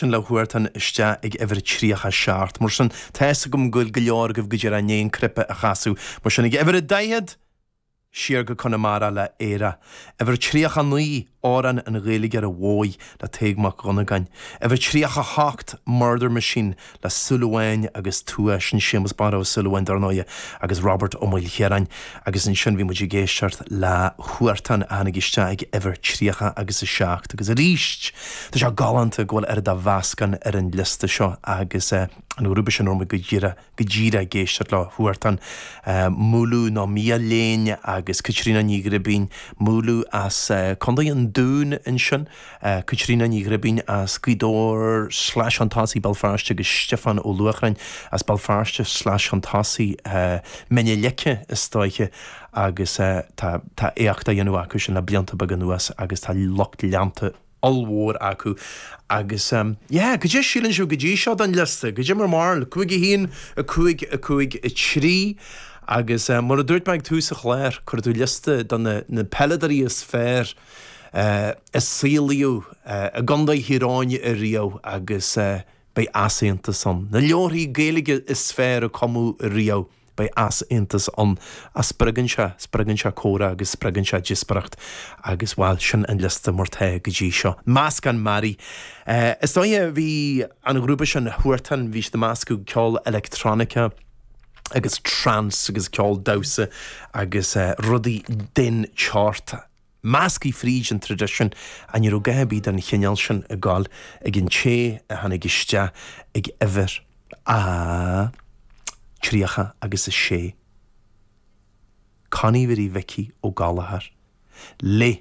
sin le Huartan isteach ag uimhir 37. Mar sin, tá fhios agam go bhfuil go leor agaibh go díreach i ndiaidh an cnaipe a chasadh. Mar sin, ag uimhir a 40! Siar go Conamara le Éire. Uimhir 39, Amhrán an Ghaeilgeora Mhóir le Tadhg Mac Dhonnagáin. Uimhir 38, Murder Machine le Súil Amháin agus Tuath, sin Séamus Barra Ó Súilleabháin, dar ndóighe, agus Robert Ó Maoilchiaráin. Agus ansin bhí muid ag éisteacht le Huartan a tháinig isteach ag uimhir 30 agus a 7 agus arís tá sé galánta go bhfuil oiread de mheascán ar an liosta seo agus an grúpa sin a raibh muid go díreach go díreach ag éisteacht leo Huartan, Múlú nó Miadhachlughain agus Caitríona Ní Ghribín, Múlú as Contae an Dúin ansin. Caitríona Ní Ghribín as Gaoth Dobhair sleais an tosaigh Béal Feirste agus Stiofán Ó Luachráin as Béal Feirste sleais an tosaigh Mín na Leice istoíche agus tá éacht á dhéanamh acu sin le blianta beaga anuas agus tá lucht leanta ollmhór acu agus yeah goidé a shíleann sibh go dtí seo den liosta goidé bhur mbarúil 5 1 5 5 3 agus mar a dúirt mé ag tús an chláir cuir tú liosta de na peileadóirí is fearr a saolaíodh i gContae Thír Eoghain ariamh agus beidh easaontas ann. Na leabharthaí Gaeilge is fearr a cumadh ariamh, beidh easaontas ann. Ach spreagann sé, spreagann sé comhrá agus spreagann sé díospóireacht agus, bhuel, sin an liosta mar tá go dtí seo. Meascán mearaí. Is dóiche, bhí an grúpa sin, Huartan, bhí siad ag meascadh ceol electronica, agus trance agus ceol damhsa agus rudaí den tseort. Measctha fríd an traidisiún. Ach ní raibh a dhath ar bith den chineál sin ag goil ag an té a tháinig isteach ag uimhir a 30 agus a sé. Connie Mhary Mhicí Ó Gallchóir. Le.